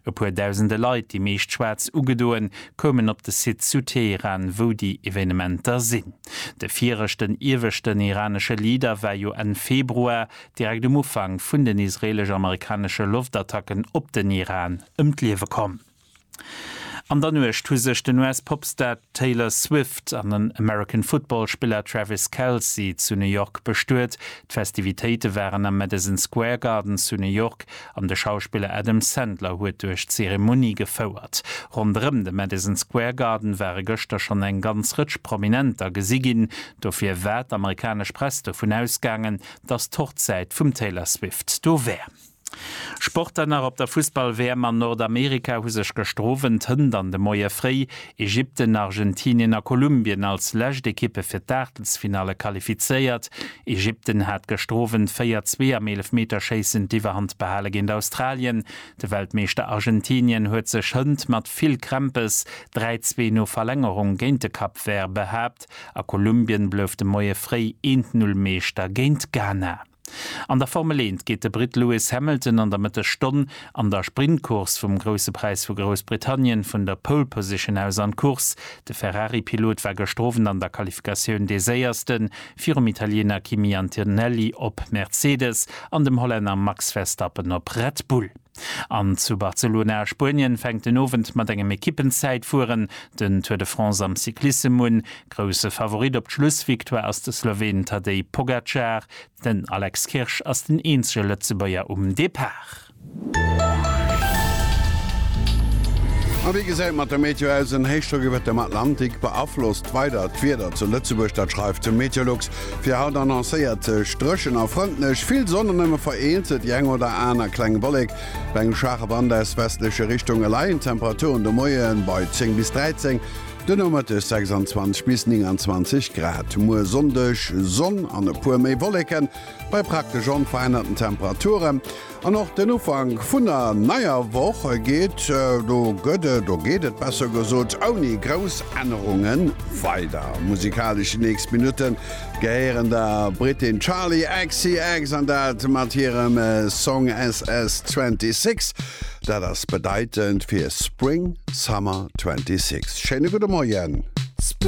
E puer dausende Leit, déi meescht schwaarz ugedoen, koumen op de Site zu Teheran, wou déi Evenementer sinn. De viregten ieweschten iranesche Leader war jo Enn Februar, direkt um Ufank vun den israelesch-amerikanesche Loftattacken op den Iran, ëm d'Liewe komm. An der Nuecht hu sech den US-Popstar Taylor Swift an den American Football-Spiller Travis Kelce zu New York bestuet. D'Festivitéite waren am Madison Square Garden zu New York An de Schauspiller Adam Sandler huet duerch d'Zeremonie gefouert. Ronderëm de Madison Square Garden ware gëschter schonn eng ganz Rëtsch Prominenter gesi ginn. Dofir war d'amerikanesch Press dovun ausgaangen, datt d'Hochzäit vum Taylor Swift do wär. Sport dann nach, Op der Fussball-WM an Nordamerika hu sech gëschter Owend, Hënt an de Moie fréi Ägypten, Argentinien a Kolumbien als lescht Ekippe fir d'Aachtelsfinalle qualifizéiert. Ägypten hat gëschter Owend 4, 2 am Eelefmeterschéissen d'Iwwerhand behale géint Australien. De Weltmeeschter Argentinien huet sech hënt mat vill Krämpes 3, 2 no Verlängerung géint de Cap Vert behaapt a Kolumbien blouf de Moie fréi 1, 0 Meeschter géint Ghana. An der Formel 1 geet de Britt Lewis Hamilton an der Mëttesstonn an der Sprintcourse vum Grousse Präis vu Groussbritannien vun der Pole Position aus an d'Course. De Ferrari-Pilot war gëschter Owend an der Qualifikatioun dee Séierste virum Italiener Kimi Antonelli op Mercedes an dem Hollänner Max Verstappen op Red Bull. An zu Barcelona a Spuenien fänkt den Owend mat engem Ekippenzäitfueren den Tour de France am Cyclissem un. Grousse Favorit op d'Schlussvictoire ass de Sloween Tadej Pogacar. Den Alex Kirsch ass den eenzege Lëtzebuerger um Depart. A wéi gesäit mat der Meteo aus? En Héichdrock iwwert dem Atlantik beaflosst weider d'Wieder zu Lëtzebuerg, dat schreift de Meteolux. Fir haut annoncéiert sech dréchen a frëndlech, vill Sonn an nëmme vereenzelt déi eng oder aner kleng Wollek. Bei engem schwaache Wand aus westleche Richtunge leien d'Temperaturen de Moie bei 10 bis 13, de Nomëtteg 26 bis 29 Grad. Muer Sonndeg Sonn an e puer méi Wolleken bei praktesch onverännerten Temperature. An och den Ufank vun der neier Woch geet, do gëtt et, do geet et besser gesot, ouni grouss Ännerunge weider. Musikalesch déi nächst Minutte gehéieren der Brittin Charli XCX an dat mat hirem Song SS26. Dat ass bedeitend fir Spring Summer 26. Schéine gudde Moien.